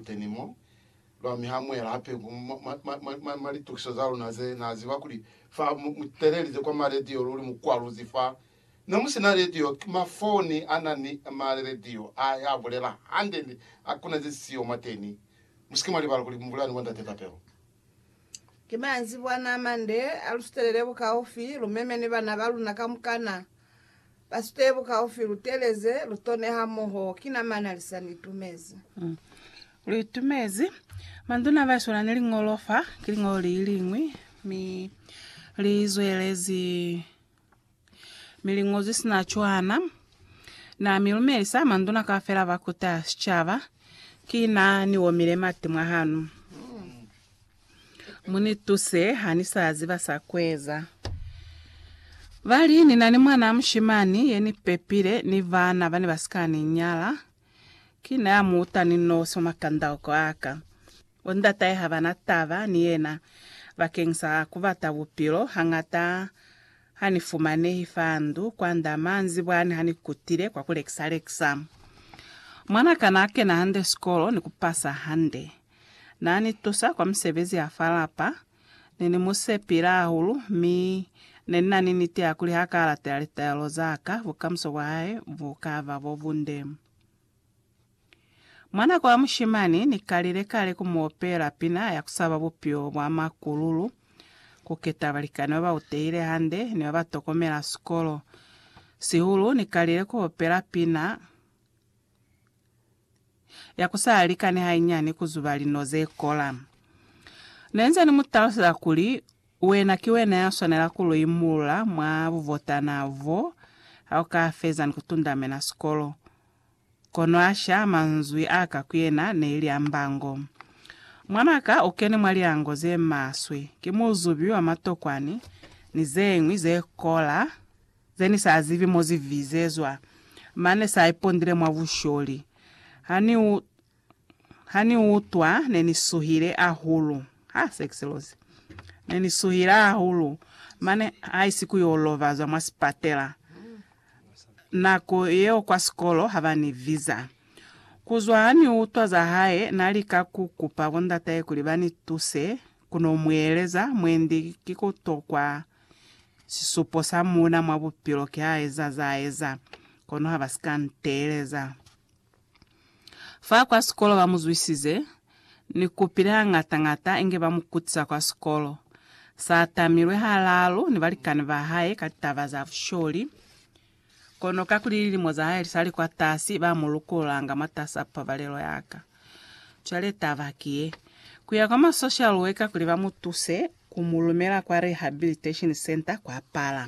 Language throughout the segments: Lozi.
Teni mo, lwa mi ha muela hape ku mwa litukiso za luna ze na ziba kuli fa mu telelize kwa ma radio luli mu kwaluzi fa ne mu sina radio, ki ma foni a na ni ma radio a ya bulela hande ni a kuna ze siyo mwateni. Musike mwa libala kuli mbulelani bo Ndate Tapelo. Ki manzibwana a mande a lu sutelele bukaufi, lu meme ni bana ba luna kamukana ba sutele bukaufi, lu teleze, lu tone hamoho. Ki na mana li sa ni itumezi. Lu itumezi. Manduna ba swana ni liñolo fa, ki liñolo li liñwi, mi li zwelezi Mi liñozwi sina Johanna na mi lumelisa manduna kaufela ba kuta sicaba, ki na ni omile mati mwa hanu. Mu ni tuse, ha ni sa ziba sa kueza. Ba li, Ni na ni mwanaa mushimani ye ni pepile ni bana bane ba si ka ni nyala. Ki na mu uta ni noso makandauko a ka. Bo ndatahe ha ba na taba ni yena bakeng sa ku bata bupilo. Hangata ha ni fumanehi fa ndu kwand'a manzibwani ha ni kutile kwa ku lekisa-lekisa. Mwan'a ka n'a kena hande sikolo ni ku pasa hande. N'a ni tusa kwa misebezi ya fa lapa. Ne ni musepile hahulu, mi Ne nina ni niti ya kuli ha ka latela litaelo za ka, bukamuso bwa hae bu ka ba bo bunde. Mwa nako ya mushimani, Ni kalile kale ku mu opela pina ya ku saba bupilo bwa makululu, ku keta balikani ba ba utehile hande ni ba ba tokomela sikolo. Sihulu, Ni kalile ku opela pina, ya ku sa likani hainyani ku zuba lino ze kola. Ne nze ni mu taluseza kuli, Wena ki wena ya swanela ku lu imulula mwa buvotana bo ha u ka feza ni ku tundamena sikolo. Kono asha manzwi a ka ku yena neili a mbango. Mwanaka u keni mwa liango ze maswe, ki muzubi wa matokwani ni zeñwi ze kola Ze ni sa zibi mo zi vizezwa, mane sa ipondile mwa busholi. Ha ni u, ha ni u utwa, ne ni suhile hahulu. Ha, se ki selozi. Ne ni suhile hahulu, mane haisi ku yo lovazwa mwa sipatela. Nako yeo kwa sikolo ha ba ni viza. Ku zwa ha ni utwa za hae, na lika ku kupa bondatahe kuli ba ni tuse, Ku no mueleza mwendi ki ku tokwa. Sisupo sa muuna mwa bupilo ki ha eza za eza, kono ha ba si ka nteeleza. Fa kwa sikolo ba mu zwisize, ni kupile hañata-ñata inge ba mu kutisa kwa sikolo. Sa tamilwe halaalu ni balikani ba hae ka taba za busholi. Kono kakuli lilimo za hae lisali kwatasi, ba mu lukulanga mwatasa pabalelo ya ka. Cwale taba ki ye, Ku ya kwa ma social worker kuli ba mu tuse, ku mu lumela kwa rehabilitation centre kwa pala.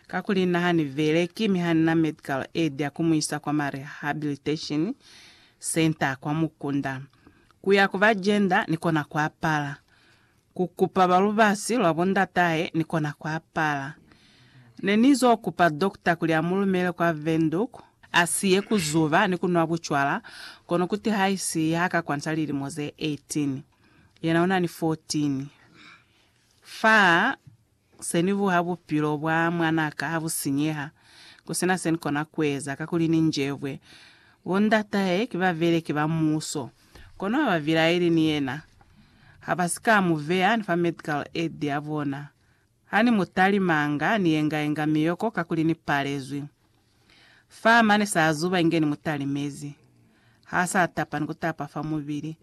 Kakuli na ha ni beleki mi ha ni na medical aid ya ku mu isa kwa ma rehabilitation centre kwa mukunda. Ku ya ku ba gender ni kona kwa pala. Ku kupa ba lubasi lwa bo ndatahe ni kona ku apala. Ne ni zo kupa dokta kuli a mu lumele kwa Windhoek, a si ye ku zuba ni ku nwa bucwala, kono ku tihaisi ha ka kwanta lilimo ze 18. Yena una ni 14. Fa. Se ni buha bupilo bwa mwan'a ka ha bu sinyeha, ku si na se ni kona ku eza, kakuli ni njebwe. Bo ndat'ahe ki babeleki ba muuso, kono ha ba bilaeli ni yena. Ha ba si ka mu beya ni fa medical aid ya bona. Ha ni mu talimanga, ni yenga-yenga miyoko kakuli ni palezwi. Fa mane sa zuba inge ni mu talimezi. Ha sa tapa ni ku tapa fa mubili.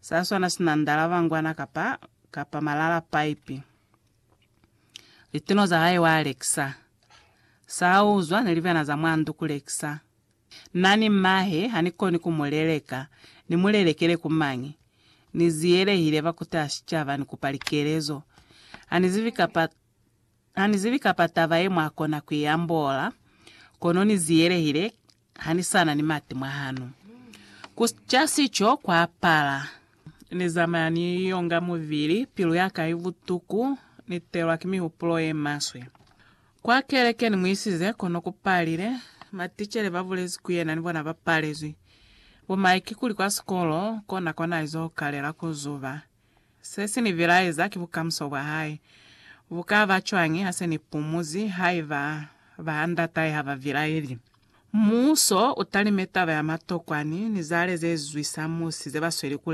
Sa swana sina ndalabangwana kapa, kapa malala pipe. Litono za hae wa lekisa. Sa a uzwa ne li bena za mwa ndu ku lekisa. Na ni mahe, ha ni koni ku mu leleka. Ni mu lelekele ku mañi? Ni ziyelehile ba ku taha sicaba, ni kupa likelezo. Ha ni zibi kapa, ha ni zibi kapa taba ye mwa kona ku i ambola, kono ni ziyelehile Ha ni sa na ni mati mwa hanu. Ku ca sico kwa pala. Ni zamaya ni yonga mubili, pilu ya ka i butuku, ni telwa ki mihupulo ye maswe. Kwa keleke ni mu isize, kono ku palile. Maticele ba bulezi ku yena ni bona ba palezwi. Bo Mike kuli kwa sikolo, kona kwa na izo kalela ku zuba. Se si ni bilaeza ki bukamuso bwa hae. Bu ka ba cwañi ha se ni pumuzi haiba baandatahe ha ba bilaeli? Muuso u talime taba ya matokwani ni zale ze zwisa musi ze ba sweli ku